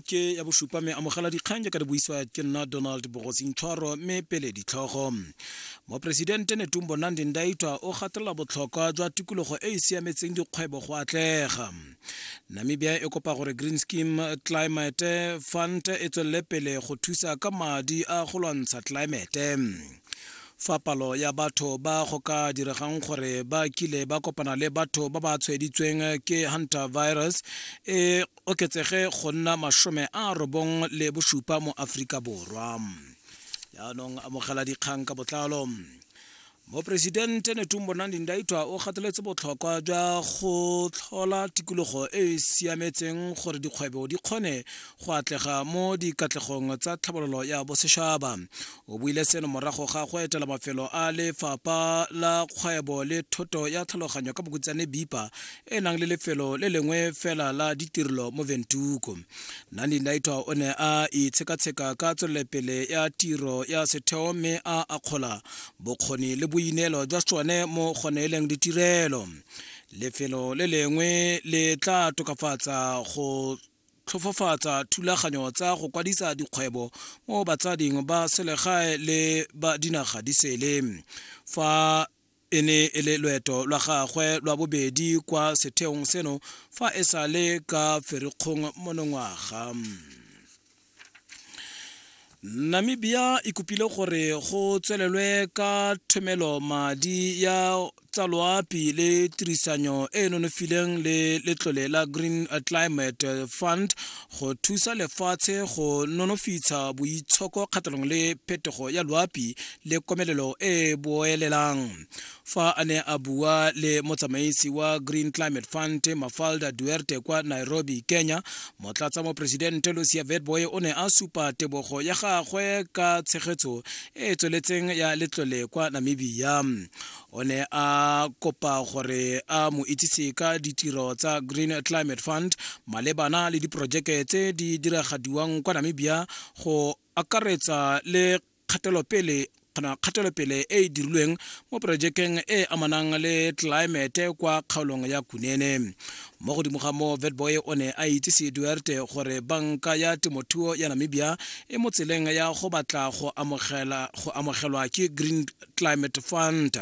ke ya bosupa me amogela dikgang jaaka di buisiwa ke nna donald bogosintshwaro mme pele ditlhogo moporesidente netumbo nandi ndaitwa o gatelela botlhokwa jwa tikologo e e siametseng dikgwebo go atlega namibia e kopa gore green scheme climate fund e tswelele pele go thusa ka madi a go lwantsha climate fa palo ya batho ba go ka diregang gore ba kile ba kopana le batho ba ba tshwaeditsweng ke hunter virus e oketsege go nna masome a robong le bosupa mo aforika borwa jaanong amogela dikgang ka botlalo moporesidente netumbo nandi ndaitwa o gateletse botlhokwa jwa go tlhola tikologo e e siametseng gore dikgwebo di kgone go atlega mo dikatlegong tsa tlhabololo ya bosetšhaba o buile seno morago ga go etela mafelo a lefapha la kgwebo le thoto ya tlhaloganyo ka bokutsane bipa e nang le lefelo le lengwe fela la ditirelo mo ventuko nani naitwa o ne a itshekatsheka ka tswelelepele ya tiro ya setheo mme a akgola bokgoni le boineelo jwa tsone mo gone e leng ditirelo lefelo le lengwe le tla tokafatsa go tlhofofatsa thulaganyo tsa go kwadisa dikgwebo mo batsading ba selegae le ba dinaga di sele fa E ne e le loeto lwa gagwe lwa bobedi kwa setheong seno fa e sa le ka ferikgong monongwaga. Namibia e kopile gore go tswelelwe ka thomelo madi ya tsa loapi le tirisanyo e e nonofileng le letlole la Green Climate Fund go thusa lefatshe go nonofitsha boitshoko kgatlhanong le phetogo ya loapi le komelelo e e boelelang fa a ne a bua le motsamaisi wa green climate fund mafalda duerte kwa nairobi kenya motlatsa moporesidente lucia vetboy o ne a supa tebogo ya gagwe ka tshegetso e e tsweletseng ya letlole kwa namibia o ne a kopa gore a mo itsise ka ditiro tsa green climate fund malebana le diporojeke tse di diragadiwang kwa namibia go akaretsa le kgatelopele kana kgatelopele e e dirilweng mo porojekeng e e amanang le tlelaemete kwa kgaolong ya kunene mo godimo ga moo vetboy o ne a itsise duerte gore banka ya temothuo ya namibia e mo tseleng ya go batla go amogelwa ke green climate fund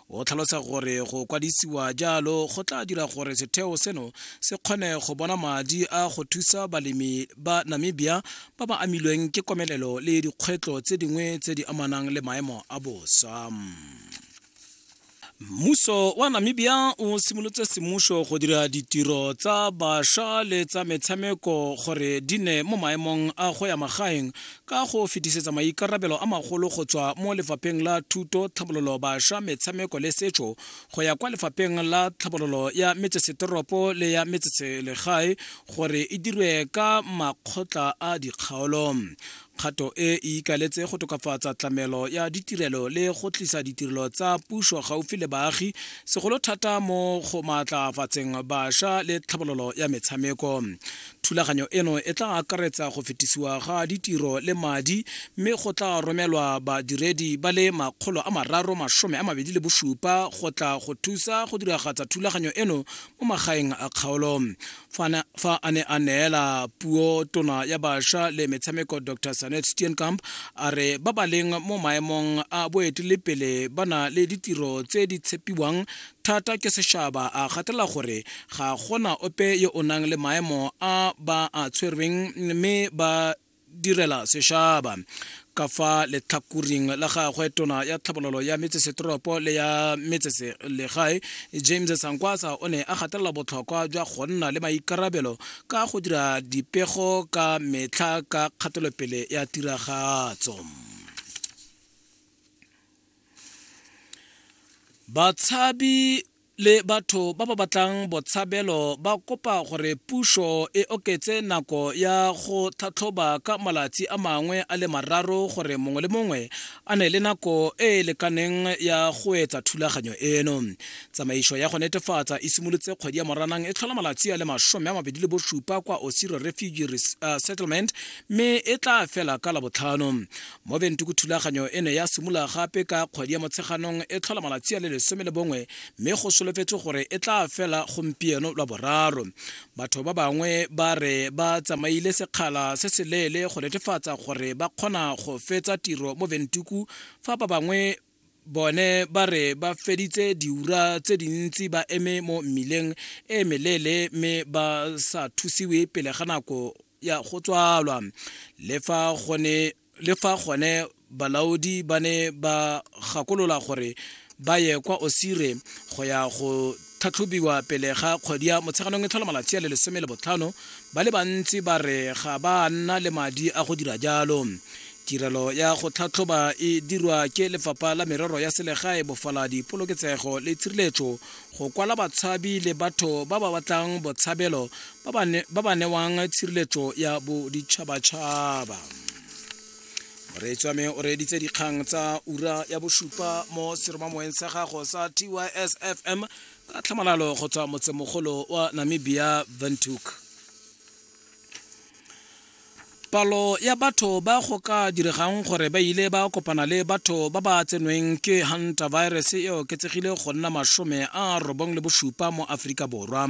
o tlhalosa gore go kwadisiwa jalo go tla dira gore setheo seno se kgone go bona madi a go thusa balemi ba namibia ba ba amilweng ke komelelo le dikgwetlho tse dingwe tse di amanang le maemo a bosa mmuso wa namibia o simolotse semmuso go dira ditiro tsa bašwa le tsa metshameko gore di ne mo maemong a go ya magaeng ka go fetisetsa maikarabelo a magolo go tswa mo lefapheng la thuto tlhabololo bašwa metshameko le setso go ya kwa lefapheng la tlhabololo ya metsesetoropo le ya metseselegae gore e dirwe ka makgotla a dikgaolo kgato e e ikaletse go tokafatsa tlamelo ya ditirelo le go tlisa ditirelo tsa puso gaufi le baagi segolo thata mo go maatlafatseng bašwa le tlhabololo ya metshameko Thulaganyo eno e tla akaretsa go fetisiwa ga ditiro le madi mme go tla romelwa badiredi ba le makgolo a mararo masome a mabedi le bosupa go tla go thusa go diragatsa thulaganyo eno mo magaeng a kgaolo. Fa a ne a neela puo tona ya bašwa le metshameko Dr Sanet Steenkamp a re ba ba leng mo maemong a boetelepele ba na le ditiro tse di tshepiwang thata ke sešaba a gatela gore ga gona ope yo o nang le maemo a ba a tshwerweng mme ba direla sešaba ka fa letlhakoring la gagwe tona ya tlhabololo ya metsesetoropo le ya metseselegae james sankwasa o ne a gatelela botlhokwa jwa go nna le maikarabelo ka go dira dipego ka metlha ka kgatelopele ya tiragatso batshabi le batho ba ba batlang botshabelo ba kopa gore puso e oketse nako ya go tlhatlhoba ka malatsi a mangwe a le mararo gore mongwe le mongwe a ne le nako e e lekaneng ya go etsa thulaganyo eno tsamaiso ya go netefatsa e simolotse kgwedi ya moranang e tlhola malatsi a le masome a mabedi le bosupa kwa osiro refugee uh, settlement mme e tla fela ka labotlhano mo bentuku thulaganyo e ne ya simolola gape ka kgwedi ya motsheganong e tlhola malatsi a le lesome le bongwe mme go solofetse gore e tla fela gompieno lwa boraro batho ba bangwe ba re ba tsamaile sekgala se se leele go netefatsa gore ba kgona go fetsa tiro mo bentuku fa ba bangwe bone ba re ba feditse diura tse dintsi ba eme mo mmileng e meleele mme ba sa thusiwe pele ga nako ya go tswalwa le fa gone le fa gone balaodi ba ne ba gakolola gore ba ye kwa osire go ya go tlhatlhobiwa pele ga kgwedi ya Motsheganong e tlhola malatsi a le lesome le botlhano, ba le bantsi ba re ga ba nna le madi a go dira jalo. Tirelo ya go tlhatlhoba e dirwa ke Lefapha la Merero ya Selegae, Bofaladi, Poloketsego le Tshireletso go kwala batshabi le batho ba ba batlang botshabelo ba ba newang tshireletso ya boditšhabatšhaba. moreetswame o reeditse dikgang tsa ura ya bosupa mo seromamoeng sa gago sa tysfm ka tlhamalalo go tswa motsemogolo wa namibia ventuk palo ya batho ba go ka diregang gore ba ile ba kopana le batho ba ba tsenweng ke hunter virus e oketsegile go nna masome a robong le bosupa mo aforika borwa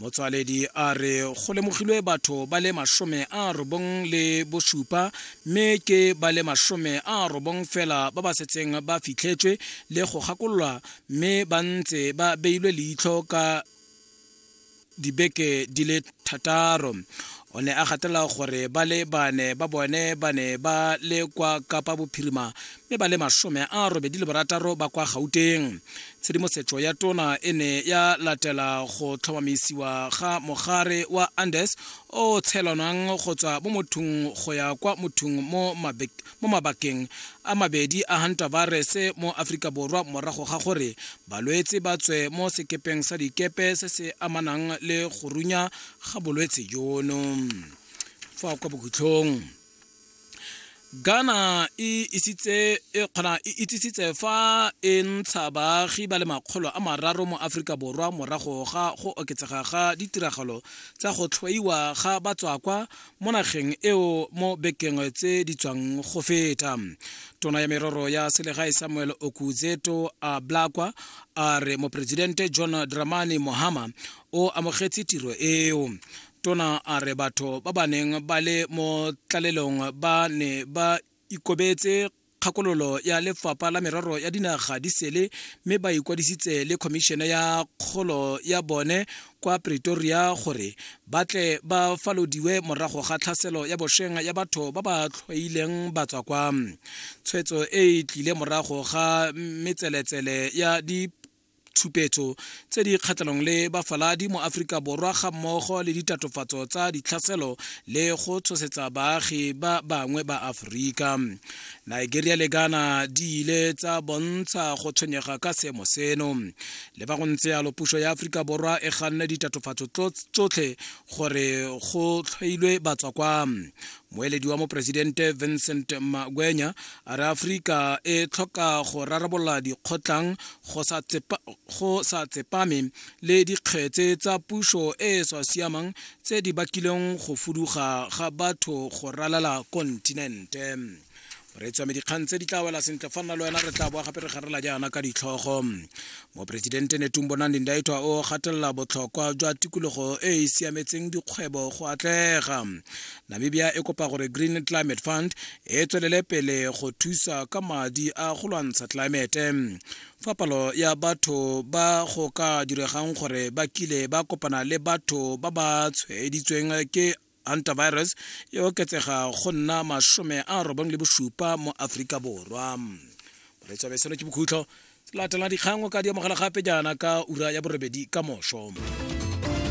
motswaledi a re go lemogilwe batho ba le masome a robong le bosupa mme ke ba le masome a robong fela ba ba setseng ba fitlhetswe le go gakololwa mme ba ntse ba beilwe leitlho ka dibeke di le thataro o ne a gatelela gore ba le bane ba bone ba ne ba le kwa kapa bophirima mme ba le masome a robedi le borataro ba kwa gauteng tshedimosetso ya tona e ne ya latela go tlhomamisiwa ga mogare wa andes o tshelwanang go tswa mo mothong go ya kwa mothong mo mabakeng a mabedi a hanta virus mo aforika borwa morago ga gore balwetse ba tswe mo sekepeng sa dikepe se se amanang le go runya ga bolwetse jono fa kwa bokhutlhong Ghana e isitse e kgona e itsisitse fa e ntsha baagi ba le makgolo a mararo mo Aforika Borwa morago ga go oketsega ga ditiragalo tsa go tlhoiwa ga batswakwa mo nageng eo mo bekeng tse di tswang go feta. Tona ya merero ya selegae Samuel Okudzeto a Blakwa a re moporesidente John Dramani Mohama o amogetse tiro eo. tona a re batho ba ba neng ba le mo tlalelong ba ne ba ikobetse kgakololo ya lefapha la merero ya dinaga di sele mme ba ikwadisitse le khomišene ya kgolo ya bone kwa pretoria gore ba tle ba falodiwe morago ga tlhaselo ya bosheng ya batho ba ba tlhoileng batswa kwa tshwetso e e tlile morago ga metseletsele ya di tshupetso tse di kgatlhanong le bafaladi mo aforika borwa ga mmogo le ditatofatso tsa ditlhaselo le go tshosetsa baagi ba bangwe ba aforika nigeria le ghana di ile tsa bontsha go tshwenyega ka seemo seno le fa go ntse yalo puso ya aforika borwa e ganne ditatofatso tsotlhe gore go tlhailwe batswa kwa moeledi wa moporesidente vincent magwenya a re aforika e tlhoka go rarabolola dikgotlang go sa tsepame le dikgetse tsa puso e e sa siamang tse di bakileng go fuduga ga batho go ralala kontinente re tswame dikgang tse di tla wela sentle fa nna le wena re tla boa gape re garela jaana ka ditlhogo moporesidente netumbo nandi ndaitwa o gatelela botlhokwa jwa tikologo e e siametseng dikgwebo go atlega namibia e kopa gore green climate fund e tswelele pele go thusa ka madi a go lwantsha tlelaemete fa palo ya batho ba go ka diregang gore ba kile ba kopana le batho ba ba tshwaeditsweng ke antivirus e oketsega go nna masome a robong le bosupa mo aforika borwa moretsabe seno ke bokhutlho latela dikgang o ka di amogela gape jaana ka ura ya borobedi ka moso